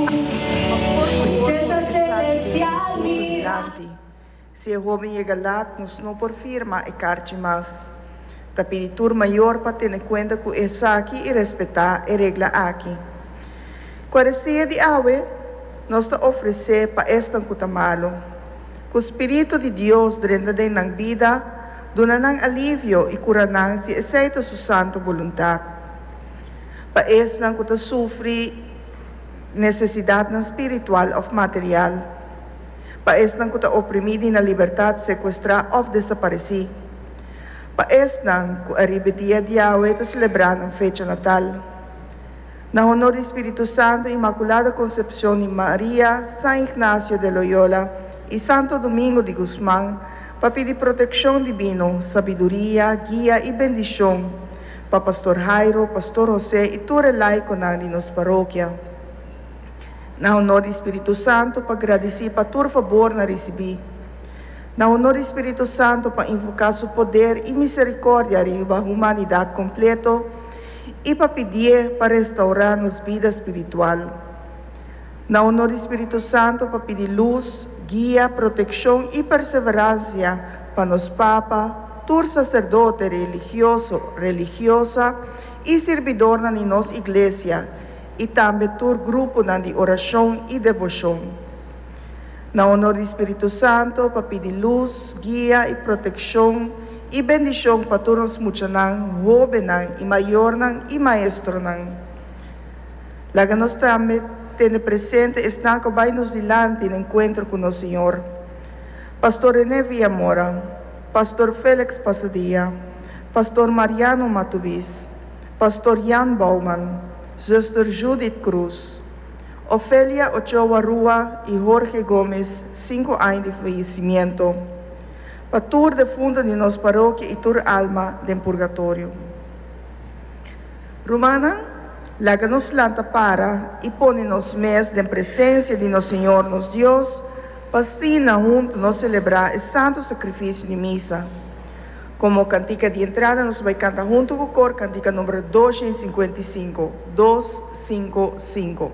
Por favor por revisa di e puntos dilanti. Si e hoben yega lat nos no por firma e karchi mas. Ta pidi tur mayor pa tene kuenta ku esaki i respetá e regla aki. Kuarestia di awe nos ta ofresé pa esnan ku ta malu. Ku spiritu di Dios drenta den nan bida, duna nan alivio i kura nan si esei ta su santu boluntat. Pa esnan ku ta sufri. nesesidatnan spiritual òf material, pa esnan ku ta oprimí di nan libertat, sekuestrá òf desaparesí, pa esnan ku ariba e dia di Yahweh ta selebrá nan fecha natal. Na honor di Spiritu Santu, Inmakulada Konsepshon di Maria, San Ignasio de Loyola i Santo Domingo di Gusman, pa pidi protekshon dibino, sabiduria, guia i bendishon, pa Pastor Jairo, Pastor Jose y tur e laiconan di nos parokia. Na honor di Spiritu Santo pa gradici pa tur fabor na ricibi. Na honor di Spiritu Santo pa invoca su poder y misericordia riba humanidad completo y pa pidié pa restaura nos bida spiritual. Na onor di Spiritu Santu pa pidi lus, guia, protekshon i perseveransia pa nos Papa, tur saserdote religioso, religiosa i sirbidornan di nos iglesia i tambe tur gruponan di orashon i devoshon. Na onor di Spiritu Santu pa pidi lus, guia i protekshon i bendishon pa tur nos muchanan, hobennan i mayornan i maestronan. Laga nos tambe tene presente esnan ku a bai nos dilanti na enkuentro ku nos Señor, Pastor René Villamora, Pastor Felix Pasadia, Pastor Mariano Matubiz, Pastor Jan Bouwman, Zuster Judith Croes, Ofelia Ochoa Rua i Jorge Gomez, sinku aña di feyesimiento, pa tur defuntu di nos parokia i tur alma den purgatorio. Rumannan, laga nos lanta para i pone nos mes den presensia di nos Señor, nos Dios, pa asina huntu nos selebrá e santu sakrifisio di misa. Komo kantika di entrada nos bai kanta huntu ku kor kantika number dosha i sinkuenta i sinku, dos, sinku, sinku.